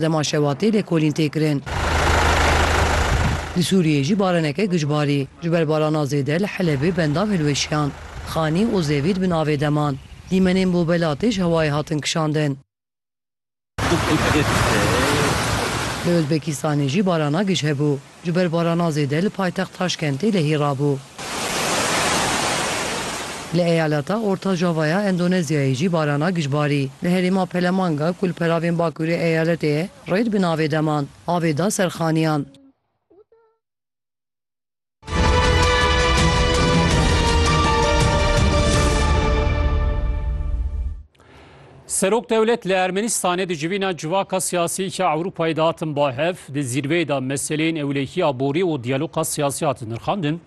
Dema şewatê lêkolîn tê kirin. Li Sûriyê jî baraneke giç barî. Ji ber barana zêde li Helebê bendan hilweşiyan. Xanî û zevî di bin avê de man. Dîmenên bo Belatê ji hewayê hatin kişandin. Li Uzbekistanê jî barana giç hebû. Ji ber barana zêde li paytext Taşkentê lehî rabû. Li eyaleta Orta Java ya Endonezyayê jî barana giş barî. Li herêma Pelemanga ku li peravên bakurê eyaletê ye, rêd bi navê deman, avê da ser xaniyan. Serok dewlet li Ermenistanê di civîna civaka siyasiyê ya Ewropayê de hatin ba hev, di zîrveyê de meseleyên ewlehî, aborî û diyaloga siyasî hatin nirxandin.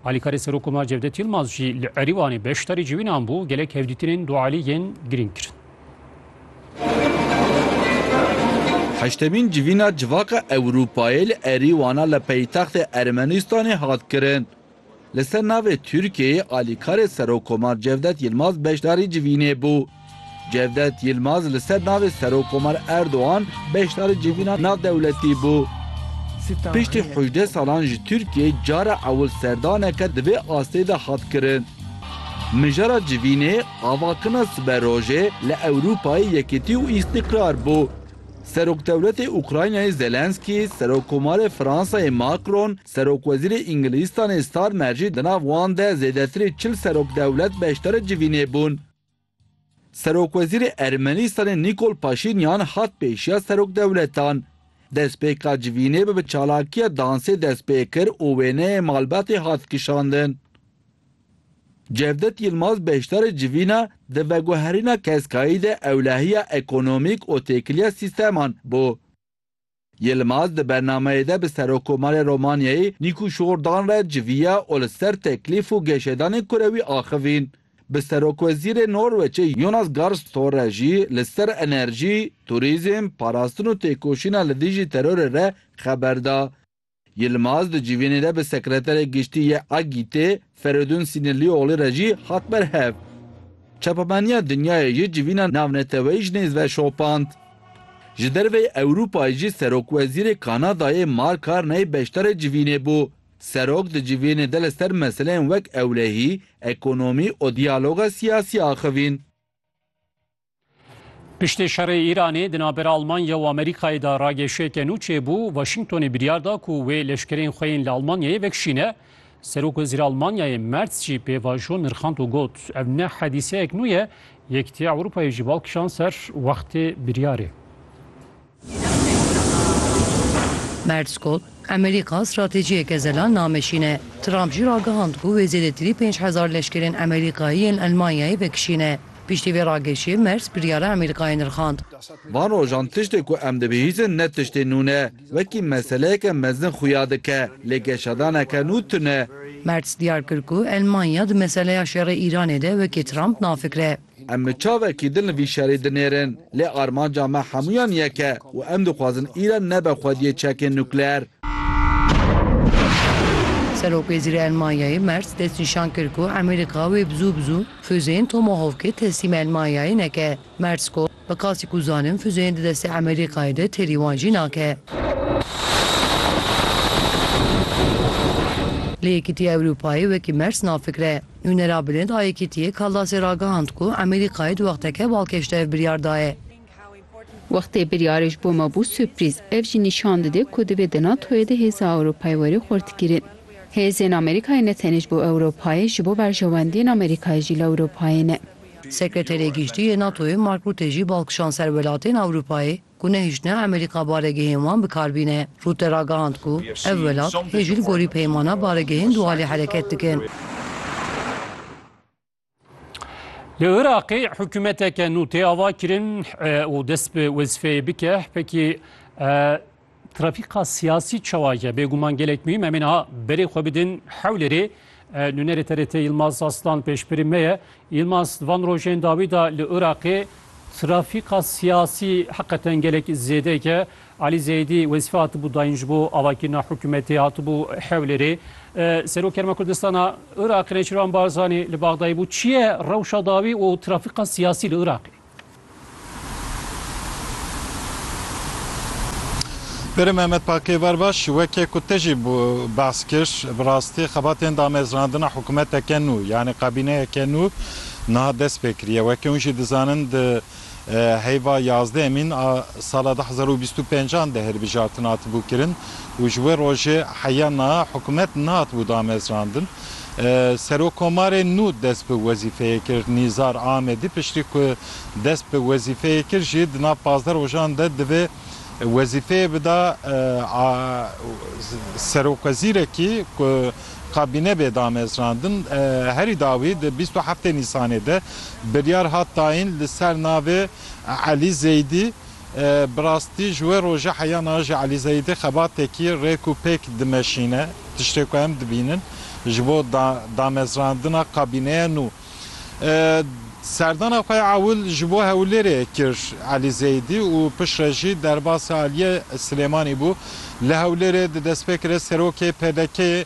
Alîkarê Serok Omar Cevdet Yilmaz jî li Erîvanê beşdarî civînan bû, gelek hevdîtinên dualî yên girîng kirin. Heştemîn civîna civaka Ewropayê li Erîvana li paytextê Ermenistanê hat kirin. Li ser navê Tirkiyeyê alîkarê Serokkomar Cevdet Yilmaz beşdarî civînê bû. Cevdet Yilmaz li ser navê Serokkomar Erdogan beşdarî civîna navdewletî bû. Piştî hejdeh salan ji Tirkiyeyê cara ewil serdaneke di vê astê de hat kirin. Mijara civînê avakirina siberojê li Ewrûpayê yekitî û îstîqrar bû. Serokdewletê Ukraynayê Zelensky, Serokkomarê Fransayê Macron Serokwezîrê Îngilîzstanê Starmer jî di nav wan de zêdetirê çil serokdewlet beşdarê civînê bûn. Serokwezîrê Ermenîstanê Nîkol Paşînyan hat pêşiya serokdewletan. Destpêka civînê bi bi çalakiya dansê dest pê kir û wêneyê malbatê hat kişandin. Cevdet Yilmaz beşdarê civîna di veguherîna keskayî de ewlehiya ekonomîk û têkiliya sîsteman bû. Yilmaz di bernameyê de bi Serokomarê Romanyayê Nîku Şordan re civiya û li ser teklîf û geşedanên kurewî axivîn. Bi Serokwezîrê Norweçê Jonas Gahr Store jî li ser enerjî, turîzm, parastin û têkoşîna li dijî terorê re xeber da. Yilmaz di civînê de bi Sekreterê Giştî yê AGቘT'ê Feridun Sînirlîoglî re jî hat berhev. Çapemeniya Dinyayê jî civîna navneteweyî ji nêz ve şopand. Ji derveyî Ewropayê jî Serokwezîrê Kanadayê Mark Carney beşdarê civînê bû. Serok di civînê de li ser meseleyên wek ewlehî, ekonomî û diyaloga siyasî axivîn. Piştê şerê Îranê di navbera Almanya û Amerîkayê de rageşiyeke nû çêbû, Washingtonê biryar da ku wê leşkerên xwe yên li Almanyayê vekişîne. Serok Wezîr Almanyayê Merz jî pêvajo nirxand û got, Ev ne hedîseyek nû ye, Yekîtiya Ewropayê jî bal kişand ser wextê biryarê. Mertzkot, Emerîka stratejiyeke zelal nameşîne. Trump jî ragihand ku wê zêdetirî pênc hezar leşkerên Emerîkayî yên Elmanyayê vekişîne. Piştî vê ragirşê Merz biryara Emerîkayê nirxand. Van rojan tiştê ku em dibihîzin ne tiştê nû ne. Wekî meseleyeke mezin xuya dike, lê geşadaneke nû tune. Merz diyar kir ku Elmanya di meseleya şerê Îranê de wekî Trump nafikre. Em bi çavekî din li vî şerê dinêrin, lê armanca me hemûyan yek e û em dixwazin Îran nebe xwediyê çekên nukleer. Serokwezîrê Elmanyayê Merz destnîşan kir ku Amerîka wê bi zû bi zû fuzeyên Tomahawkê teslîm Elmanyayê neke. Merz got, Bi qasî ku zanin fuzeyên di destê Emerîkayê de têrî wan jî nake. Lê Yekîtiya Ewropayê wekî mers nafikre. Nûnera bilind a Yekîtiyê Kaldasê ragihand ku Emerîkayê di wexteke balkêş de ev biryar daye. Wextê biryarê ji bo me bû surprîz. Ev jî nîşan dide ku divê di NATO'yê de hêza Ewropayê were xurtkirin. Hêzên Emerîkayê ne tenê ji bo Ewropayê, ji bo berjewendiyên Emerîkayê jî li Ewropayê ne. Sekreterê Giştî yê NATO'yê Mark Rutte jî bal kişand ser welatên Ewropayê ku nehiştine Amerîka baregehên wan bi kar bîne. Rutte ragihand ku ev welat hê jî li gorî peymana baregehên Dualê hereket dikin. Li Iraqê hikûmeteke nû tê avakirin û dest bi wezîfeyê bike, pkk Trafîka siyasî çawa ye? Bêguman gelek muhîm. Em ê niha berê xwe bidin Hewlêrê. Nûnerê TRT Yilmaz Aslan pêşbirî me ye. Yilmaz, di van rojên dawî de li Iraqê trafîka siyasî heqeten gelek zêde ye. Elî Zeyidî wezîfe hatibû dayîn ji bo avakirina hikûmetê, hatibû Hewlêrê. Serok Herêma Kurdistana Iraqê Nêçîrvan Barzanî li Bexdayê bû. Çi ye rewşa dawî û trafîka siyasî li Iraqê? Berê Mehmet Pakêver baş weke ku te jî behs kir bi rastî xebatên damezrandina hikûmeteke nû yanî kabîneyeke nû niha dest pê kiriye. Weke hûn jî dizanin di heyva yazdeh Mîn a sala du hezar û bîst û pênc an de hilbijartin hatibû kirin û ji wê rojê heya niha hikûmet nehatibû damezrandin. Serokkomarê nû dest bi wezîfeyê kir. Nîzar Amedî piştî ku dest bi wezîfeyê kir jî di nav pazdeh rojan de divê wezîfeyê bida serokwezîrekî ku kabîne bê damezrandin. Herî dawî di bîst û heftê Nîsanê de biryar hat dayîn li ser navê Elî Zeydî Bi rastî ji wê roja heya na jî Elî Zeyîdî xebatekî rêk û pêk dimeşîne. Tiştê ku em dibînin ji bo damezrandina kabîneya nû. Serdana xwe ya ewil ji bo Hewlêrê kir Elî Zeyîdî û piştre jî derbasê aliyê Silêmanî bû. Li Hewlêrê di destpêkirê serokê PDK'ê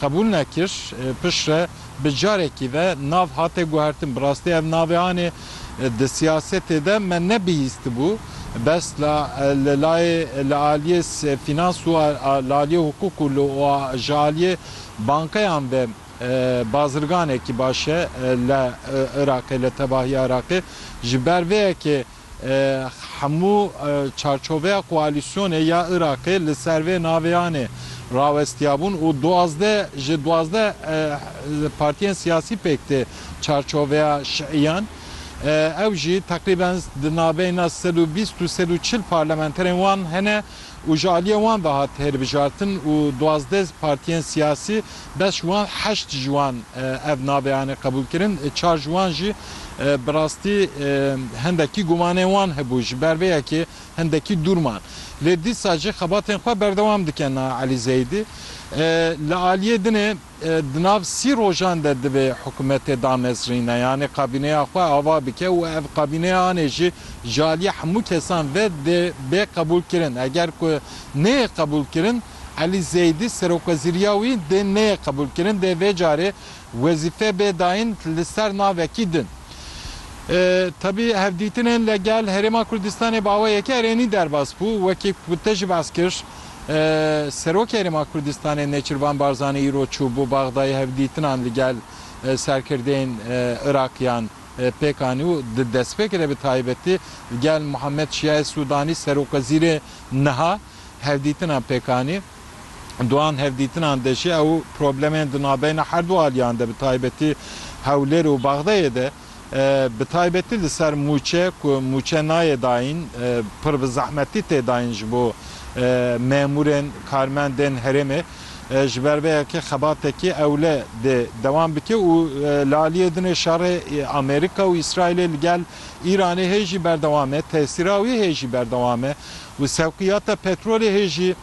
Qebûl nekir, piştre bi carekî ve nav hate guhertin. Bi rastî ev navê anê di siyasetê de me nebihîstibû. Bes la li layê li aliyê fînans û li aliyê hukuk û li ji aliyê bankeyan ve bazirganekî baş e li Iraqê, li tevahiya Iraqê. Ji ber vê yekê Hemû çarçoveya koalîsyonê ya Iraqê li ser vê naveyanê rawestiyabûn û duwazdeh ji duwazdeh partiyên siyasî pêk tê çarçoveya şiiyan. Ew jî teqrîben di nabeyna sed û bîst û sed û çil parlamenterên wan hene û ji aliyê wan ve hat hêrbijrtin û duwazdeh partiyên siyasî beş wan heşt ji wan ev navê anê qebûlkirin çar ji wan jî bi rastî hindekî gumanên wan hebû ji ber vê yekê hindekî dûr man lê dîsa jî xebatên xwe berdewam dikin Elî Zeyidî li aliyê dinê Di nav sî rojan de divê hikûmetê danesrîne yanî kabîneya xwe ava bike û ev kabîneya anê jî ji aliyê hemû kesan ve dê bê qebûlkirin. Eger ku neyê qebûlkirin Elî Zeydî serokwezîriya wî dê neyê qebûlkirin dê vê carê wezîfe bê dayîn li ser navekî din. Tevî hevdîtinên li gel Herêma Kurdistanê bi awe yekê erênî derbas bû. Wekî ku te jî behs kir Serokê Herêma Kurdistanê Nêçirvan Barzanî îro çû bo Baxdayê hevdîtinan li gel serkirdeyên Iraqiyan pêk anî û di destpêkê de bi taybetî li gel Muhammed Şiayê Sudanî Serokwezîrê niha hevdîtinan pêk anî. Di wan hevdîtinan de jî ew problemên di navbeyna herdu aliyan de bi taybetî Hewlêr û Baxdayê de Bi taybetî li ser mûçe ku mûçe nayê dayîn pir bi zehmetî tê dayîn ji bo memûrên, karmendên herêmê. Ji ber vê yekê xebatekî ewle dê dewam bike û li aliyê din ê şerê Amerîka û Îsraîlê li gel Îranê hê jî berdewam e. Tesîra wî hê jî berdewam e û sewqiyata petrolê hê jî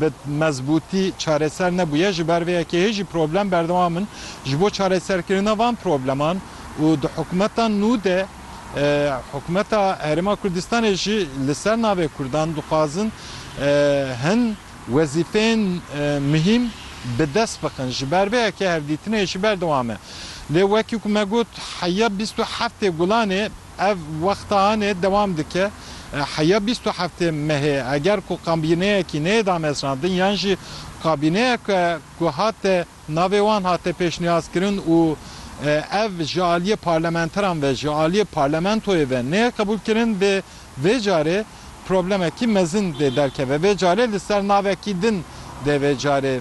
bi mezbûtî çareser nebûye, ji ber vê yekê hê jî problem berdewam in ji bo çareserkirina van probleman û di hikûmeta nû de hikûmeta Herêma Kurdistanê jî li ser navê Kurdan dixwazin hin wezîfeyên muhîm bi dest bixin ji ber vê yekê hevdîtinê jî berdewam e. Lê wekî ku me got heya bîst û heftê gulanê, Ev wexta anê dewam dike heya bîst û heftê mehê. Eger ku kabîneyekî neyê damezrandin yan jî kabîneyeke ku hate navê wan hate pêşniyazkirin û ev ji aliyê parlamenteran ve, ji aliyê parlamentoyê ve neyê qebûlkirin vê vê carê problemekî mezin dê derkeve. Vê carê li ser navekî din dê vê carê.